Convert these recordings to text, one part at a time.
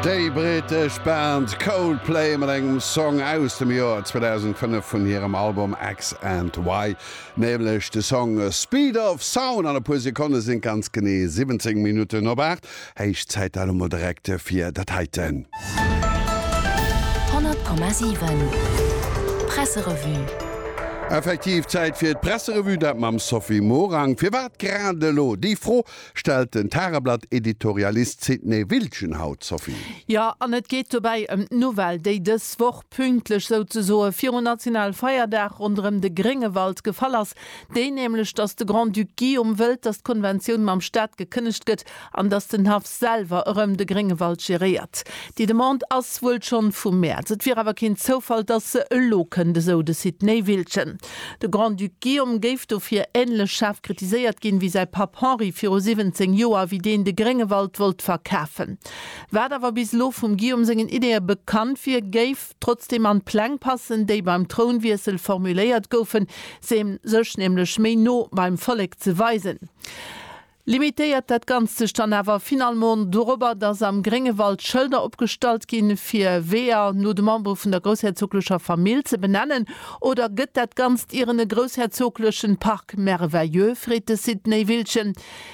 Déi brittesch Band Coldplay mat engem Song aus dem Joer 2005 vun hirem Album X and Y, nämlech de Song Speed of Sound. An e puer Sekonne sinn et ganz genee 17 Minutten op 8. Héich Zäit da lo mol direkt fir dat heiten. 100,7 Presserevue. Effektiv Zäit fir d'Presserevue, dat mam Sophie Morang. Firwat grad elo? Déi Fro Stellt den Tageblatt-Editorialist Sidney Wiltgen haut, Sophie. Jo, an et geet dobäi ëm d'Nouvelle, déi dës Woch pünktlech souzesoe viru Nationalfeierdag ronderëm de Gréngewald gefall ass, déi nämlech, datt de Grand-Duc Guillaume wëllt, datt d'Konventioun mam Staat gekënnegt gëtt an datt den Haff selwer erëm de Gréngewald geréiert. Déi Demande ass wuel schonn vum Mäerz, et wier awer keen Zoufall, datt se elo kënnt, esou de Sidney Wiltgen. De Grand-Duc Guillaume géif dofir änlech schaarf kritiséiert ginn, wéi säi Papp Henri viru 17 Joer, wéi deen de Gréngewald wollt verkafen. Wat awer bis elo vum Guillaume sengen Ideeë bekannt wier, géif trotzdeem an d'Pläng passen, déi beim Trounwiessel formuléiert goufen, sech nämlech méi no beim Vollek ze weisen. Limitéiert dat Ganzt sech dann awer finalement dorobber, dass am Gréngewald Schëlder opgestallt ginn, fir Weeër no de Membere vun der groussherzoglecher Famill ze benennen? Oder gëtt dat Ganzt ieren e groussherzoglechen Parc merveilleux? freet de Site Néivillchen.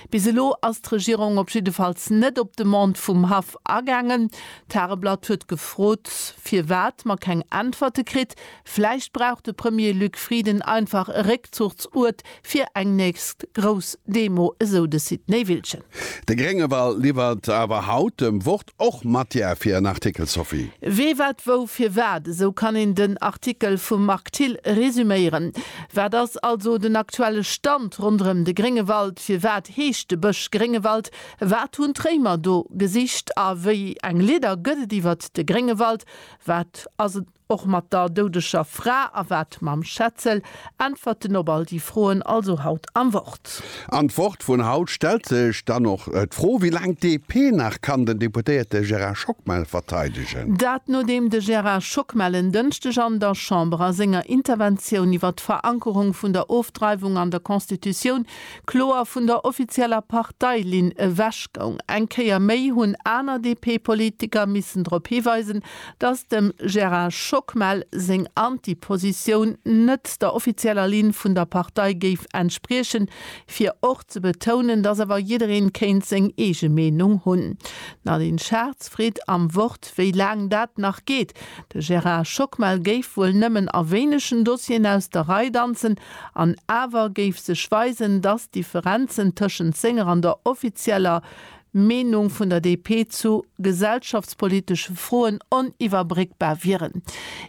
Bis elo ass d'Regierung op jiddefalls net op d'Demande vum Haff agaangen. D'Tageblatt huet gefrot, firwat mer keng Äntwerte kritt, Vläicht brauch de Premier Luc Frieden einfach e Réckzuchtsuert fir eng nächst grouss Demo, esou de Sid Néivillchen. De Gréngewal liwwert awer haut dem Wort och Matière fir en Artikel, Sophie. Wee, wat, wou, firwat, esou kann een den Artikel vum Marc Thill resuméieren. Wat ass also den aktuelle Stand ronderëm de Gréngewald? Firwat heescht de Bësch Gréngewald? Wat hunn d'Réimer do gesicht a wéi eng Lidder gëtt et iwwert de Gréngewald? Wat ass en Och mat der doudeger Fra a wat mam Schetzel? Äntwerten op all déi Froen also haut am Wort. An d'Wort vun haut stellt sech dann och d'Fro, wéi laang d'DP nach kann den Deputéierte Gérard Schockmel verteidegen. Dat nodeem de Gérard Schockmel en Dënschdeg an der Chamber a senger Interventioun iwwert d'Verankerung vun der Ofdreiwung an der Constitutioun kloer vun der offizieller Parteilinn ewechgoung. Eng Kéier méi hunn aner DP-Politiker missen drop hiweisen, dass dem Gérard Schockmel seng Anti-Positioun net der offizieller Linn vun der Partei géif entspriechen, fir och ze betounen, dass awer jiddereen kéint seng eege Meenung hunn. D'Nadine Schartz freet am Wort, wéi laang dat nach geet. De Gérard Schockmel géif wuel nëmmen a wéinegen Dossieren aus der Rei danzen, an awer géif sech weisen, dass d'Differenzen tëschent senger an der offizieller Meenung vun der DP zu gesellschaftspolitesche Froen oniwwerbréckbar wieren.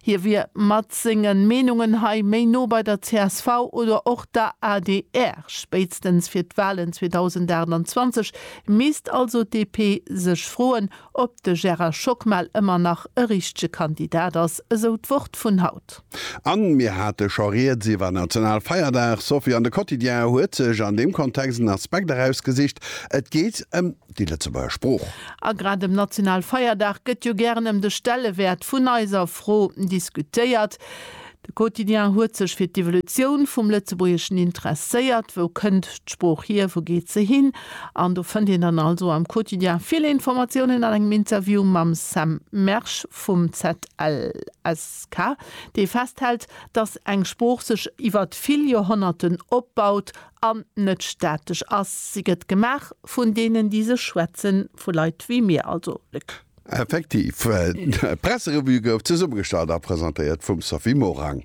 Hie wier mat senge Meenungen hei méi no bei der csv oder och der adr. Spéitstens fir d'Walen 2028 misst also d'DP sech froen, ob de Gérard Schockmel ëmmer nach e richtege Kandidat ass, esou d'Wort vun haut. An mir hate scho rieds iwwer Nationalfeierdag, Sophie. An de Quotidien huet sech an deem Kontext en Aspekt erausgesicht, et geet ëm déi Lëtzebuerger Sprooch. A grad um Nationalfeierdag gëtt jo gären ëm de Stellewäert vun eiser Fro diskutéiert. De Quotidien huet sech fir d'Evolutioun vum Lëtzebuergeschen interesséiert. Wou kënnt d'Sprooch hier, wou geet se hin? An do fënnt een dann also am Quotidien vill Informatiounen an engem Interview mam Sam Mersch vum ZLS. K, dee festhält, datt eng Sprooch sech iwwer vill Joerhonnerten opbaut an net statesch ass. Si gëtt gemaach vun deenen, déi se schwätzen, vu Leit wéi mir, also de K. Effektiv, d'Presserevue gouf zesummegestallt a presentéiert vum Sophie Morang.